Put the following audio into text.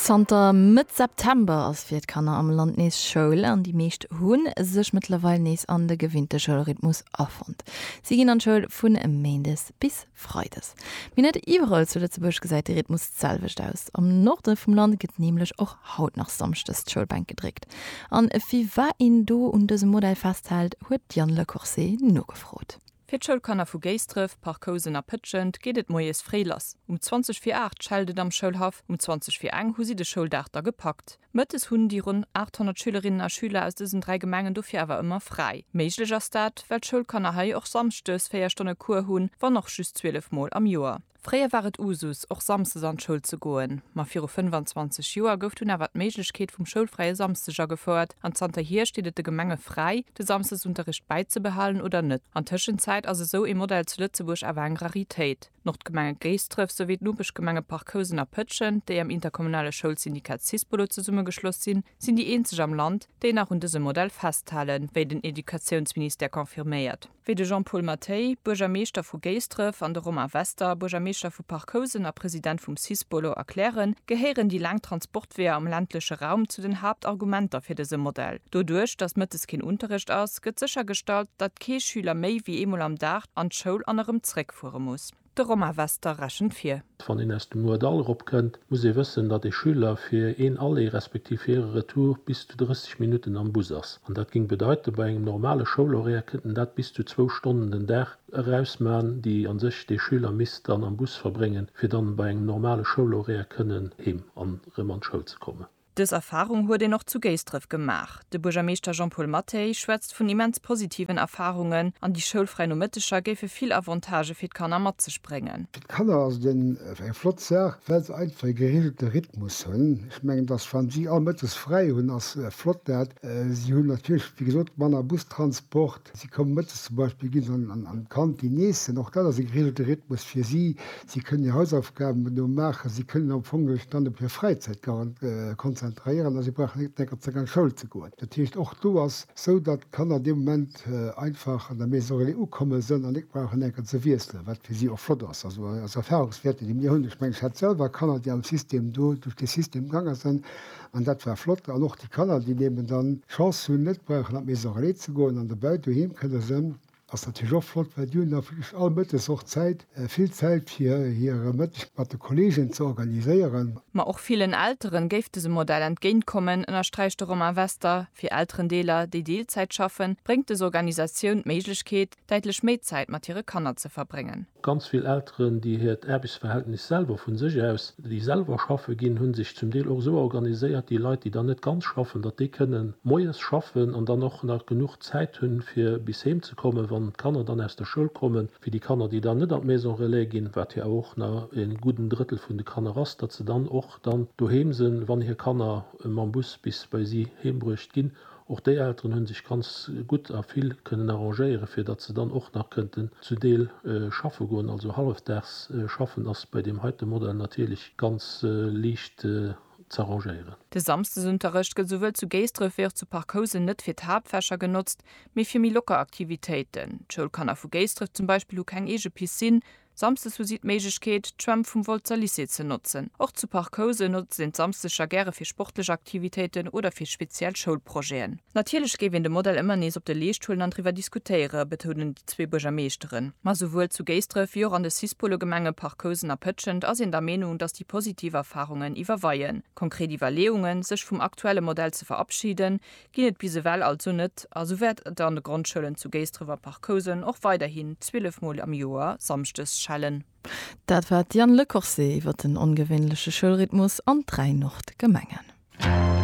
Zanter Mëtt September ass fir d'Kanner am Land nees Schoul an déi meescht hu sech mëttlerweil nees an de gewinnte Schoulrhythmus afonnt. Si ginn an d'Schoul vu méindes bis freides. Mee net iwwerall zu Lëtzebuerg gesäit de Rhythmus d'selwecht aus. Am Norde vum Land gëtt nämlech och haut nach samschdes d'Schoulbänk gedréckt. A firwat een do un dësem Modell festhält, huet d'Yann Le Corset nogefrot. Fir d'Schoulkanner vu Géisdref, Parc-Housen a Pëtschent geet et moies fréi lass. Um 20 vir 8 schellt et am Schoulhaff, um 20 vir eng hu si de Schouldag da gepackt. Mëttes hunn déi ronn 800 Schülerinnen a Schüler aus dësen dräi Gemengen dofir awer ëmmer fräi. Méiglech ass dat, well d'Schoulkanner hei och samschdes véier Stonne Cours hunn, wann och just 12 Mol am Joer. Fréier war et Usus, och samsdes an d'Schoul ze goen, ma viru 25 Joer gouf dunn awer d'Méiglechkeet vum schoulfräie Samsdeg agefouert an zanter hier steet et de Gemenge fräi, de Samsdesunterricht bäizebehalen oder net. An Tëschenzäit ass esou ee Modell zu Lëtzebuerg awer eng Raritéit. D'Nordgemenge Géisdref souwéi d'Nopeschgemenge Parc Housen a Pëtschent, déi am interkommunale Schoulsyndikat Syspolo zesummegeschloss sinn, sinn déi eenzeg am Land, déi nach un dësem Modell festhalen, wéi den Educatiounsministère confirméiert. wéi de Jean-Paul Mathey, Buergermeeschter vu Géisdref, an de Romain Wester, Buergermeeschter vu Parc-Housen a President vum Cis-Bolo, erklären, gehéieren déi laang Transportweeër am ländleche Raum zu den Haaptargumenter fir dëse Modell. Doduerch, datt mëttes keen Unterrecht ass, gëtt séchergestallt, datt kee Schüler méi wéi eemol am Dag an d'Schoul an erëm zréckfuere muss. De Romain Wester rechent vir. Wann een aus dem Moerdall eropkënnt, muss ee wëssen, datt ee Schüler fir een Aller respektiv hir e Retour bis zu 30 Minutten am Bus ass. An dat géing bedeiten, bei engem normale Schoulhoraire kéint en dat bis zu zwou Stonnen den Dag eraus man, déi a sech dee Schüler misst dann am Bus verbréngen, fir dann bei engem normale Schoulhoraire kënnen heem an erëm an d'Schoul ze kommen. Dës Erfarung huet een och zu Géisdref gemaach. De Buergermeeschter Jean-Paul Mathey schwätzt vun immens positiven Erfarungen an déi schoulfräi Nomëtteger géife vill Avantagë fir d'Kanner mat sech bréngen. Fir d'Kanner ass et en eng flott Saach, well se einfach e gereegelte Rhythmus hunn. Ech mengen, dass wann si all mëttes fräi hunn, ass flott dat. Si hunn natierlech, wéi gesot, manner Bustransport. Si kommen mëttes zum Beispill, gi se an d'Kantin iessen, och dat ass e geregelte Rhythmus fir si. Si kënnen hir Hausaufgaben do maachen, si kënnen am Fong sech dann op hir Fräizäit konzentréieren a si brauchen net d'ganzer Zäit an d'Schoul ze goen. Dat heescht, och do ass esou, datt d'Kanner dee Moment einfach an der Maison relais ukomme sinn an net brauchen enker ze wiesselen, wat fir si och flott ass. Also aus Erfahrungswäerten, déi mir hunn, ech mengen, ech hat selwer Kanner, déi am System do duerch dee System gaange sinn, An dat war flott an och déi Kanner déi eben dann d'Chance hunn net brauchen an d'Maison Relais ze goen an dobäi doheem kënne sënn, ass natierlech och flott, well déi hunn da wierklech all Mëttes och Zäit, vill Zäit fir hire Mëtteg mat de Kolleegen ze organiséieren. Ma och villen Eltere géif dëse Modell entgéint kommen, ënnersträicht de Romain Wester. Fir Elterendeeler, déi Deelzäit schaffen, bréngt dës Organisatioun d'Méiglechkeet, däitlech méi Zäit mat hire Kanner ze verbréngen. Ganz vill Elteren, déi hiert Aarbechtsverhältnis selwer vu sech aus, déi selwer schaffe ginn, hu sech zum Deel och esou organiséiert, déi Leit, déi dann net ganz schaffen, datt déi kënnen moies schaffen an dann och nach genuch Zäit hunn, fir bis heem ze kommen, wann d'Kanner dann aus der Schoul kommen, fir déi Kanner, déi dann net an d'Maison Relais ginn, wat jo awer och nach en gudden Drëttel vun de Kanner ass, datt se dann och dann doheem sinn, wann hir Kanner mam Bus bis bei si heembruecht ginn. Och déi Elteren hunn sech ganz gutt a vill kënnen arrangéieren, fir datt se dann och nach kënnten zu Deel schaffe goen. Also hallefdags schaffen ass bei deem heite Modell natierlech ganz liicht z'arrangéieren. De Samsdesunterrecht gëtt souwuel zu Géisdref wéi och zu Parc Housen net fir d'Haaptfächer genotzt, mee fir méi locker Aktivitéiten. D'Schoulkanner vu Géisdref zum Beispill hu keng eege Piscine, Samsdes hu si d'Méiglechkeet, d'Schwämm vum Wolzer Lycée ze notzen. Och zu Parc Housen notzt een d'Samsdeger gäre fir sportlech Aktivitéiten oder fir speziell Schoulprojeten. Natierlech géif een de Modell ëmmer nees op de Leescht huelen an driwwer diskutéiere betounen déi zwee Buergermeeschteren. Ma souwuel zu Géisdref wéi och an de Cis-Polo-Gemenge Parc Housen a Pëtschent ass een der Meenung, datt déi positiv Erfarungen iwwerweien. Konkret Iwwerleeungen, sech vum aktuelle Modell ze verabschiden, ginn et bis ewell also net a sou wäert et an de Grondschoulen zu Géisdref a Parc-Housen och weiderhin 12 Mol am Joer samschdes schellen. Dat war d'Diane Lecorse iwwer den ongewéinleche Schoulrhythmus an dräi Nordgemengen.